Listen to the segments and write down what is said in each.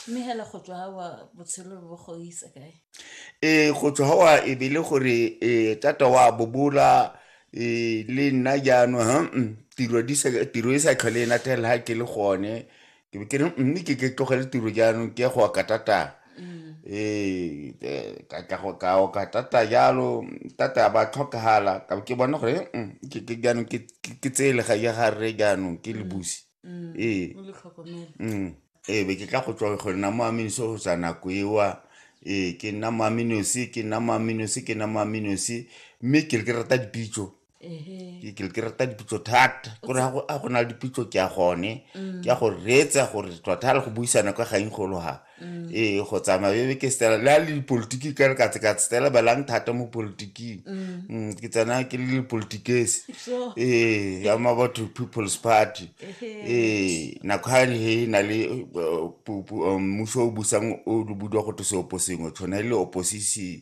mme hela go tswa ga wa botshelo bo go isa kae ee go tswa wa e be le gore ee tata wa bobola ee le nna jaanong ha mm, tiro di sa- tiro e sa tlhole e nathelela ha ke le gone ke be ke re mme ke ke tlogele tiro jaanong ke ya go oka tata ee eh, ka tla go ka oka tata jalo tata a ba tlhokagala ka be ke bona gore mm, ke ke jaanong ke ke- ke tseye lega ya ga rre jaanong ke le busi ee ee be ke tla go tswa go nna mo aminosi go tswa nako ewa ee ke nna mo aminosi ke nna mo aminosi ke nna mo aminosi mme ke le ke rata dipitso ke le ke rata dipitso thata kore a go na le dipitso ke ya gone mm. ke ya go reetsa gore tlotha le go buisana kwa gaeng golo ga Mm. ee go tsamaya bebe ke stela le a le dipolitiki ka re ka tse ka stela belang thata mo politiking mm. Mm, ke tsena ke le dipolitikese ee ya mabatho people's party ee nako ga he na le uh, um, mmuso o busang o le budiwa go tose opo sengwe tshwana e le opposition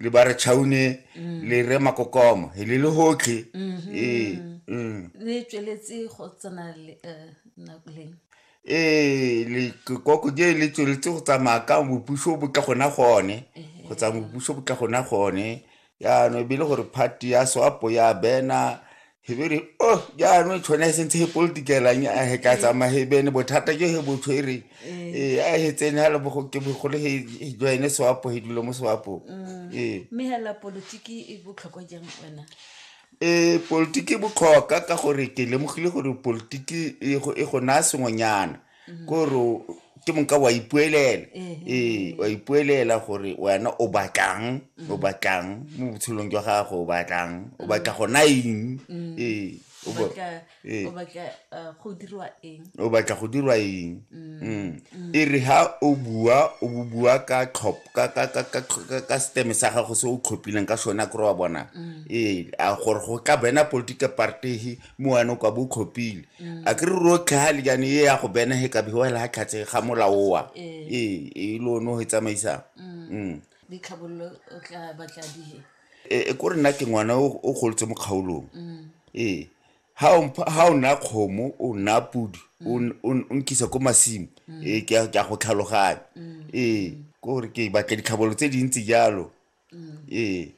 le ba re chaune mm. le re makokoma le le hotlhe mm-hmm. ee mm. le tsweletse go tsena le eh, nakoleng ee le koko je le tsweletse go tsamaya ka bopuso bo tla gona gone go tsamaya bopuso bo tla gona gone yaanong ebile gore party ya swapo ya bena he be re o oh, jaanong tshone se ntse he politikelang a he ka tsamaya he bene bothata jo he botshwere ee eh. eh, a he tsene ga le ke bogolo he joine sewapo he dule mo sewapo mm. ee mme hela politiki e botlhokwa jang wena ee politiki e botlhoka ka gore ke lemogile gore politiki e go e naya sengwenyana mm-hmm. kore ke moka wa ipuelela ee wa ipuelela gore wena o batlang mm-hmm. o batlang mo botshelong jwa gago o batlang o batla go na eng mm-hmm. ee o batla go dirwa eng o batla go dirwa eng e re ha o bua o bua ka tlhop ka ka ka ka ka steme sa gago se o tlhophileng ka sone kore wa bona ee a gore go tla bena political party moano kwa bo tlhophile mm. a ke re rotlhe ga le jane e ya go bena he ka bewa la tlhatse ga molaoa ee eh. e eh, le one go e tsamaisang mm. mm. eh, e ko re nna ke ngwana o golotse mo kgaolong ee ga o nna kgomo o nna podi o nkisa ko masimo ee ke ya go tlhaloganya ee ko gore ke batla ditlhabolo tse dintsi jalo ee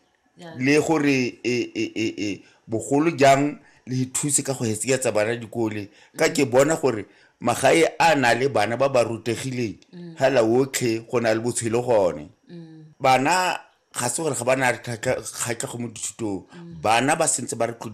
le gore e, e, e, e, bogolo jang le thuse ka go hetseketsa bana dikole ka ke bona gore magae a na le bana ba ba rutegileng hala mm. otlhe go na le botshelo gone mm. bana ga se gore ga ba na kgatlhego mo dithutong mm. bana ba sentse ba re